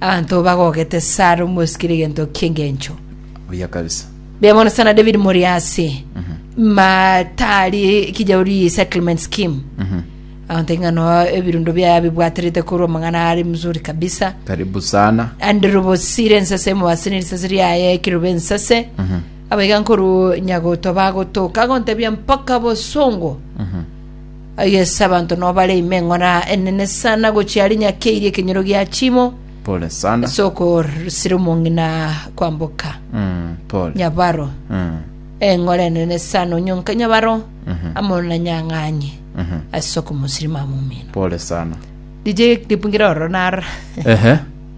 Abanto bagogete Sara omosikire egento ki'engencho. Buya kabisa. Buya mono sana David Moriasi. Matari kijauri settlement scheme. Abanto ing'ano ebirundo bia bibwaterete korwa amang'ana ari mzuri kabisa. Karibu sana. Andrew Bosire ensase mobasini risase riaye kirobe ensase. Abaiga nkoru nyagoto bagotoka gontebia mpaka bosongo. Aye ase abanto nao bare ime eng'ora enene sana gochia aria nyakeirie ekenyoro gia chimo Pole sana. ase okorsira omong'ina kwamboka Mm, pole. nyabaro Mm, eng'ora enene sana onyonka nyabaro mhm, amo na nyang'anye mhm. ase okomosirima momino Pole sana. dije ripungira oro nara Ehe.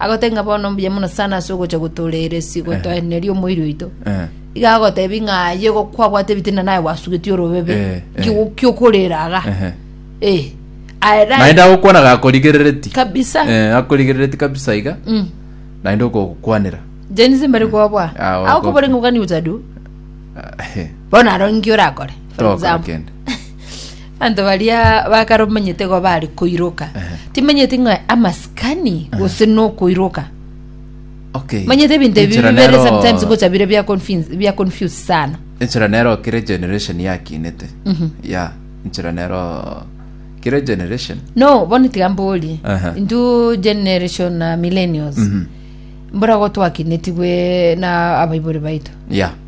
Agotebia ng'a bono mbuya mono sana ase ogocha gotoreera esigo Eh. toenerie omoiri oito Eh. iga agotebia ng'a aye go- kwabwate ebitina naye gwasugetie orobebe Eh, eh. Ki- kiokorera aga Ehe. Eh, aye naye- naende agokwana gakorigerereti kabisa Eh, akorigerereti kabisa iga Mm. naende okokwanera jenisi mbere kwabwa Ah, wako- agokoboreng'okani utadu bono aro nki orakore for toka example kende Abanto baria bakare omanyete igo bari koiroka timanyeti ng'a amasikani gose nokoiroka okay manyete ebinto ebi Enchera bibere nero- sometimes gocha bire bia confuse- bia confuse sana enchera nero kere generation yakinete ya enchera nero kere generation no bono tiga mborie Aha. intwe generation na millennials mbora gotwakinetigwe na abaibori baito ya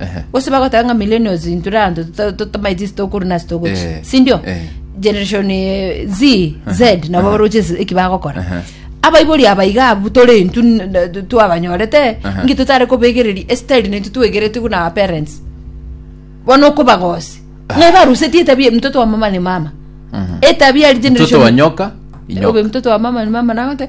Ehe. gose bagoteba ng'a millennials intwe ranto tota- totamaeti ase tokorwa nase togochi Eh, sindio eh. generation eh, z z nabo baroche ase- eki bagokora Ehe. abaibori abaiga abu tore intwe n- n- twabanyorete Ehe. ngi totare kobegereria estyle naintwe twegerete buna our parents bono okobagosi ng'ai barusetie etabia mtoto wa mama ni mama etabia eri mtoto generation wa nyoka Obe inyoka mtoto wa mama ni mama nagote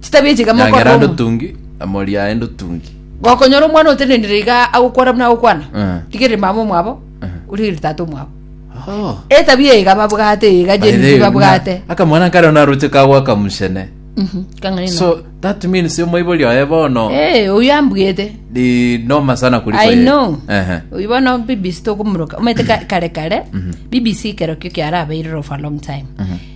Chitabi echi iga mokorora Nyangera omo- ndotungi, amori aye ndotungi. gokonyora omwana otenenire iga agokwana buna agokwana Eh. rigereri mama omwabo origereri tata omwabo Oh. etabia iga babwate iga By the jenzi way, babwate na- akamwana nkare naroche kagwaka muchene Mhm, kang'aina. so that means omoibori oye bono Eh, oyo ambwete ni noma sana kuliko i yeye. know Ehe. oyo bono bbc tokomuroka omete ka- kare kare bbc kerokio kiarabeire for a long time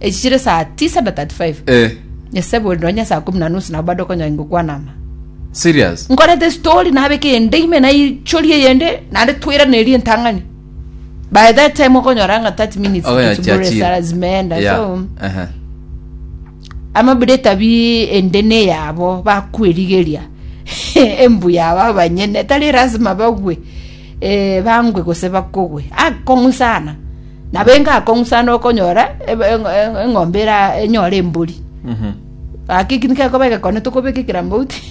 Echi chire saa tisa na 35 Eh, nyesebori nonya saa kumi na nusu nabo bado konya ingokwana ama serious? nkorete story nabeka eyende ime naichoria eyende naende twiranerie entang'ani by that time okonyora ng'a 30 minutes Ogo ya zibure chiachire. sara zimeenda Yeah, so aha. amabire tabi ende neyabo bakwerigeria embuya abo abanyene tari lazima bagwe Ee, bangwe gose bakogwe. Akong'usana, nabenga akong'usana okonyora ebe- eng- eng- eng'ombe era- enyore embori. Mhm. Gaki eki nikekoba egekone tokobeka ekirambauti.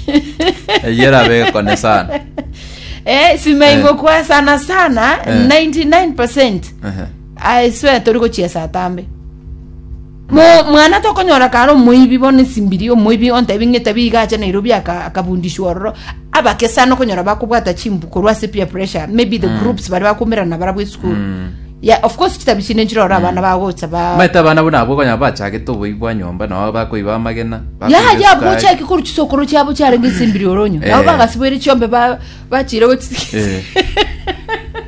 Eyio erabe egekone sana. Eh, simeingo Eh. kwa sana sana Eh. 99% Ehe. I swear tori gochia saa tambe. Nomwana tokonyora kare omoibi bono esimbiri, omoibi ontebie ng'a etabia iga acha Nairobi aka akabundiswa ororo, abake sana okonyora bakobwata chimbu korwa ase peer pressure, maybe the groups baria bakoumerana nabarabwo esukuru. Yeah, of course chitabia chinde nchire ororo abana bagocha ba Omanyete abana buna abwo okonyora bachagete oboibi bwa nyomba, nao bakoiba amagena, bakoiba yaha yabo esukari. gochaki korwa chisokoro chiabo chiarenge esimbiri oronyo nabo Eh. bagasiboire chiombe ba- bachire gochi Eh.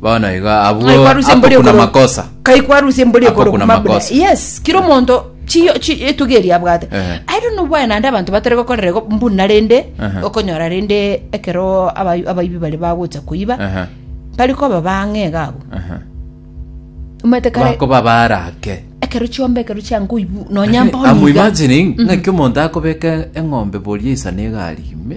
bono iga Ng'ai abwo kwarusia mbori akokuna okoro- makosa Kai kwarusia mbori Akokuna okoro kuma buna. makosa. Yes, kira omonto chiyo chi- etugi eria abwate. Eh. I don't know why naende abanto batari gokorera igo mbuna rende Aha. okonyora rende ekero abai- abaibi bari bagocha koiba Aha, bari koba bang'e iga abwo. aha. Omanyete kare bakoba barake ekero chiomba ekero chiankoibu nonya mboni iga. amuimagining ng'aki omonto akobeka eng'ombe boria isana egari ime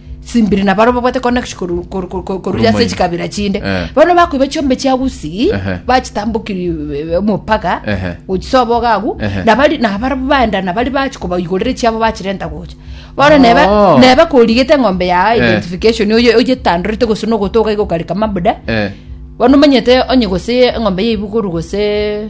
Simbiri na barobwo bwate connection koru- koru- koru- koru- koruya ase Rumaini. chikabira chinde Eh. bono bakoiba chiombe chia gusii Ehe. bachitambokiri eh, omopaga Ehe. gochisoba ogagu Ehe. nabari nabarobwo baenda nabari bachi kobaigorera chiabo bachirenta gocha bono neba Oh. neba korigete eng'ombe ya Eh. identification oye- oyetandorete gose nogotoga igokareka mabuda Eh. bono omanyete onye gose eng'ombe yaibugoru gose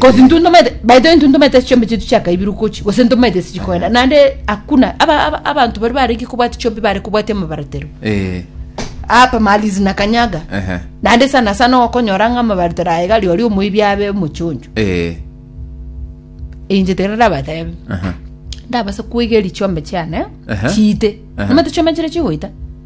Gose intwe ntomaete by the way intwe ntomaete chiombe chitu chiakaibirwe kochi gose ntomaete ase chikoenda naende hakuna aba- aba- abanto bari barenge kobwati chiombe bare kobwati amabaratero Eh, apa malizi na kanyaga ehe, naende sana sana okonyora ng'a amabaratero aye gari ori omoibi abe omochoncho eh, inche tere ndabatebe aha. ndabase kwegeri chiombe chiane Ehe. chiite Ehe. nomate chiombe chire chigoita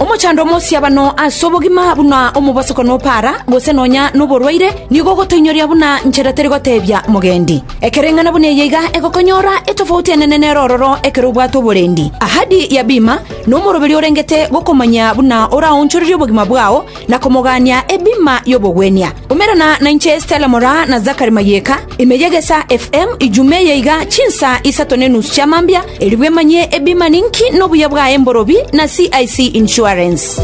Omochando omosiabano ase obogima buna omobosoko nopara, gose nonya noborwaire, nigo ogotoinyoria buna nchera teri gotebia mogendi. Ekereng'ana buna eye iga egokonyora etofauti enene nere ororo ekero obwate oborendi. Ahadi ya bima nomoroberio orengete gokomanyia buna oraonchorerie obogima bwao, na komogania ebima y'obogwenia. Umerana nainche Stella Moraa na Zachary Mayeka, ime y'egesa FM, ijuma eye iga chinsa isato ne enusu chia mambia, erigwe manye ebima ninki nobuya bwaye mborobi na CIC Insurance.